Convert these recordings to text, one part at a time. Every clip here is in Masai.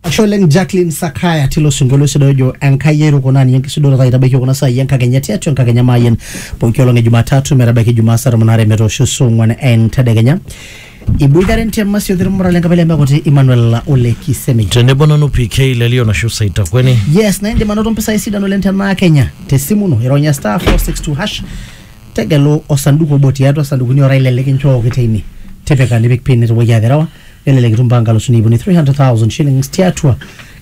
ashe oleng jacklin sakaya tilo sinkolio sidai ojo enkai eruko naa ninye enkisudorota aitabaiki kuna saai enkakenya tiatua enkakenya maayian pooki olong e jumatatu metabaiki jumaa saa tomon aare metoosho saa ong'uan entedekenya iboitare ntiamasi othirmura lenkapai lemekuti emmanuel ole kisemei tenebo nanu pk lelio nashu saitakweni yes na indim anoto mpisai sidan oleng tenaa kenya tesimu ino ironya star 462 hash tegelu osanduku obo tiatua osandukuni orai lele kinchooki teine tipika nipik pin nitumoki aterewa nelelekitwa mpaka nkalusuni iip uni 300,000 shillings tiatua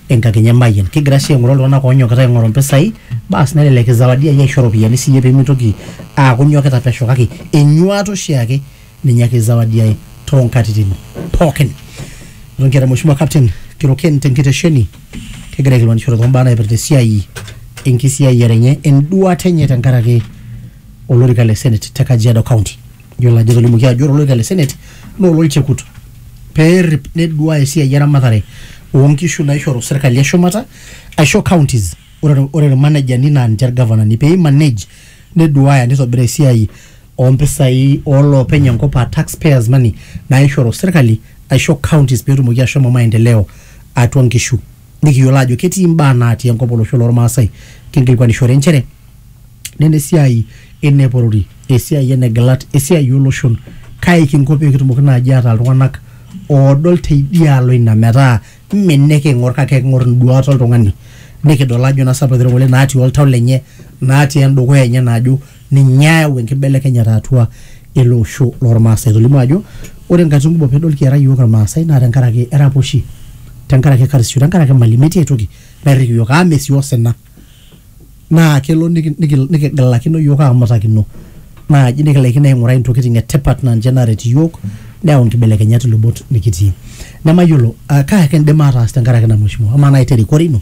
enkakenya emayian kigira sii aing'oru iltung'anak oonyokita aing'oru mpisai baas nelelek izawadi ai aisho iropiyiani siyie pimintoki aaku inyokita pesho kake enyuata oshiake ninye ake izawadi ai toonkatitin pookin Ronkia te Mheshimiwa Captain Kiroken tenkitesheni kegira aikilikuanishore toombaa naipirta esiai enkisiayiare enye enduata enye tenkaraki olorika le Senate te Kajiado County. Yiolo ajo etolimuoki ajo ore olorika le seneti naa ololchekut pee errip neduaaya esiai eramatare oonkishu naishoru serkali eshumata aisho counties ore ilmanejani naa ninche ilgavanani pee eimanage neduaaya neitobiraa esiai oo mpisai oo loopeny enkop aa tax payers money naaishoru serkali aisho counties pee etumoki ashomo maendeleo atua inkishu. nikiyiolo ajo ketii imbaa natii enkop olosho lormaasai kinkilikuanishore inchere nena esiai ene porori esiai ene gilat esiai oloshon kai kinko pee kitumoki naaji ataa iltung'anak oodol teidialo ina metaa mme niking'or kake king'or induat oltung'ani nikidol ajo nasapuk ng'ole natii oltau lenye natii endukuya enye naajo ninye ayau enkibelekenyata atua ele osho lormaasai etolimu ajo ore nkatitin kumok pedol kiara yiok irmaasai naa tenkaraki eraposhi tenkaraki karsisho tenkaraki mali metii aitoki nairriki yiok amu mesioyo osina naa kelo niki niki- nikigilakino yiok amutakino naaji nikilaikino aing'urai intokiting etipat naa ninche naret iyiok neyau inkibelekenyat ilubot nikitii nemayiolo uh, kaa kindim ataas tenkaraki ina mheshimiwa amaa naaji terikore ino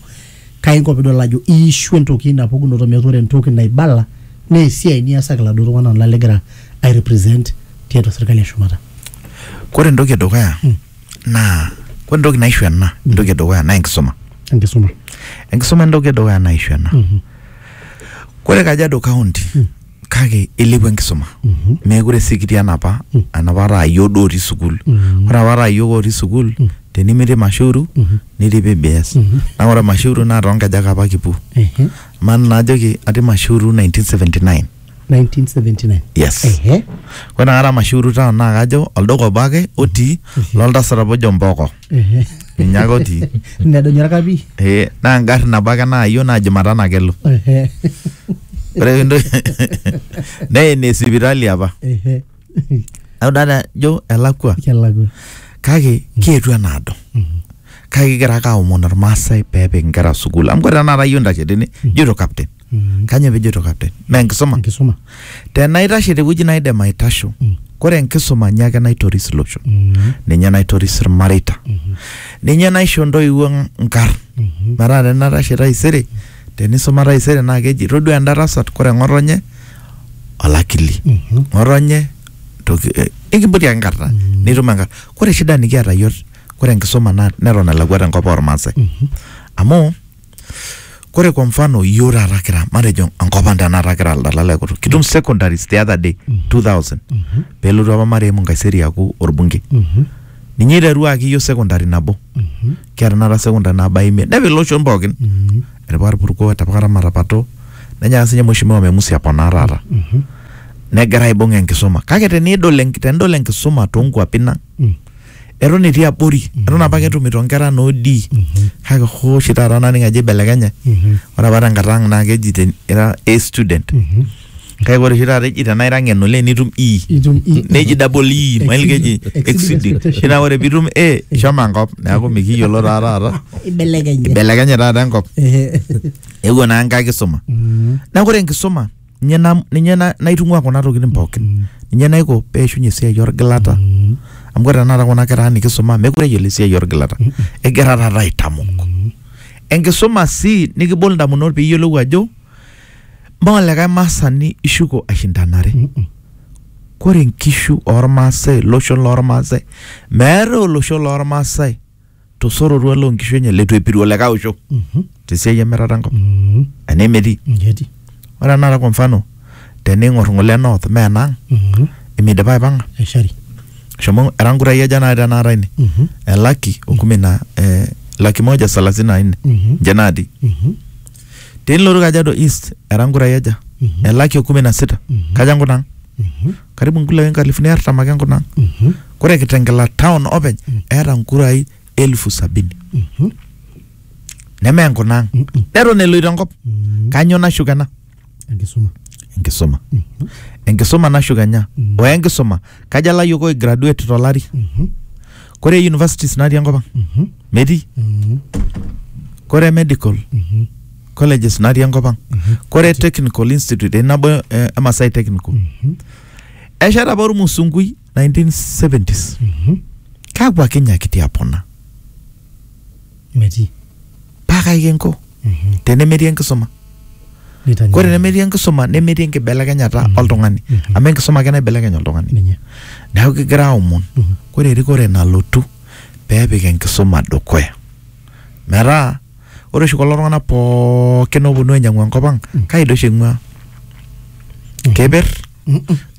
Kai inko pidol ajo iishu entoki ina pukunoto metaa ore entoki naibala naa esiai niasaki laduo tung'anak la ligira ai represent tiatua serkali e shumata? Kore entoki e dukuya naa kore entoki naishu ena entoki e dukuya naa enkisuma. Enkisuma. Enkisuma entoki e dukuya naishu ena. Kore Kajiado County kake eilepua enkisuma Mhm. meekure sii kitii enapa Mm. enapa taa yiok duo otii sukuul Mm. ore apa taa yiok otii sukuul Mm. tenimitii mashouru Mhm. nitii PBS Mhm. naa ore mashouru naa toonkejek apa kipuo Ehe. maana naajoki atii mashouru 1979 1979 yes Ehe. ore inakata mashouru town naa kajo olduka obo ake otii loltasat apa ojo mbooko Ehe. inyaka otii nedonyoraka pii Eh, naa ngarrin apake naayieu naa jumatano ake elo Ehe. ore pintoki naa ene sipitali apa Ehe. adolta ajo elakua kelakua kake kietu enaado kake kigira ake aomon irmaasai peepik inkera sukuul amu ore tenakata iyieu intashe tene jito captain Kanyoo pejoito captain? Mee enkisuma? enkisuma Tenaa itashe tewueji naidim aitasho, kore enkisuma ninye ake naitoris losho. Ninye naitoris ilmareita. Ninye naisho ntoiwuo ng- nkarn. Metaa tenatashe taisere, tenisuma taisere naa keji todua enda tasat kore ng'otonye olakili. Ng'otonye toki eh, nikimpoti ake nkarna nitum enkarna. Kore shida nikiata iyiok kore enkisuma naa neton elakua tenkop olmaasai. Amu Kore kwa mfano yiok taata kira matejo enkop ang tenakata kira ildala le kutuk kitum secondaries the other day 2000 pelotu apa Mariam Nkaiseri aaku orbungei ninye eiteruaki yiok secondary nabo kiata tenakata secondary naabaya imiet nepiik iloshon pookin etipika irpurko etipika irmatapato nenyaaka sinye mheshimiwa Memusi aponaa taata negira aibung enkisuma kake tenidol enk- tenidol enkisuma tonkuapi nang eton etii abori eton apake etumito nkera noo D kake hoo oshi taata naning ajo eibelekenye ore apa tenkata ang naa keji te ira A student kake ore oshi taata eji tenaa ira ng'en oleng nitum E Itum E. neji double E mail keji Exceeding exceeding expectation. naa ore piitum A ishomo enkop neeku mikiyiolo taa taata ibelekenye ibelekenye taata enkop Ehe. eewuo naa enkae kisuma neeku ore enkisuma ninye na- ninye na- naitung'ua kuna tokitin pookin ninye naiko peishunye esiai orgilata amu ore tenakata kuna kera ang nikisuma mekure eyiolo esiai orgilata egira taata aitamok enkisuma sii nikibol indamunot piiyiolou ajo maa olikae maasani ishuko aishindanare kore inkishu ormaasai iloshon lormaasai meetae olosho lormaasai to sorotua loo nkishu enye leitu epiru olikae osho Mhm. te siai emirata enkop Mhm. enemetii. Nketii. Ore tenakata kwa mfano tening'or ng'ole e North mee enaang Mhm. imidipa aipang'a Eshari. eshomo era nkurai aja naata enaata ine Mhm. elaki o kumi na eh, laki moja salasini na nne Mhm. nje natii Mhm. tenilotu Kajiado East era nkurai aja Mhm. elaki o kumi na sita Mhm. kaja nkuna ang Mhm. karibu nkuruai nkalifuni artam ake enkuna ang Mhm. kore kitengela town openy eeta nkuruai elfu sabini Mhm. neme enkuna ang Mhm. neton eloito enkop Mhm. kanyoo nashuk ena enkisuma enkisuma Mhm. enkisuma nashuk enya Mm. o enkisuma kaja layiok oi graduate tolari Mhm. kore universities natii enkop ang Mhm. metii Mhm. kore medical Mhm. colleges natii enkop ang kore technical institute etii nabo eh, e Masai technical esheta apa ormusungui 1970s kakwa kenya kitii apona metii paa kai kinko tenemetii enkisuma Nitanyamala. kore nemetii enkisuma nemetii enkibelekenyata oltung'ani Mhm. amu enkisuma ake naibelekeny oltung'ani ninye neeku kigira aomon Mhm. kore erikore nalotu peepik enkisuma dukuya metaa ore oshi kulo tung'anak pookin ooponu ainyiang'u enkop ang kai doi oshi eing'ua keper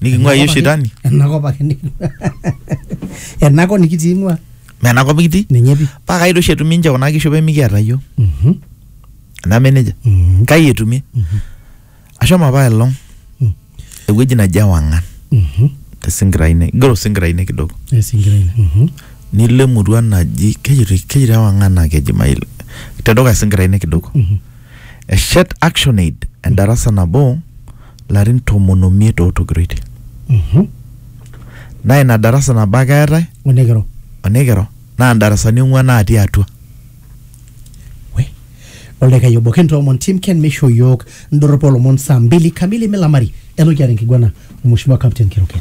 niking'ua iyie oshi tani enakop ake nikitii enakop nikitii ing'ua mee enakop kitii ninye pi paa kai doi oshi etumi ninche kuna kishu pemikiata iyiok Mhm, enaa mee nejia mhm, kai etumie mhm. ashomo apa aelong Mm. ewueji naji ewang'an Mhm. te singiraine igero singiraine kidogo esingira ina Mhm. nilo emurua naji kejito kejito ewang'an naa keji mailo tedukuya singiraine kidogo Mhm. eshet action aid endarasa nabo larin tomon omiet ootogiroitie Mhm. naa ina darasa nabo ake eetae onegero onigero naa ndarasani ong'uan natii atua We, oldaikai obo kintoomon Tim Ken meishoo iyiook indorropu oolomon saa mbili kamili milamari eton kiata enkiguana o Mheshimiwa Captain Keruke.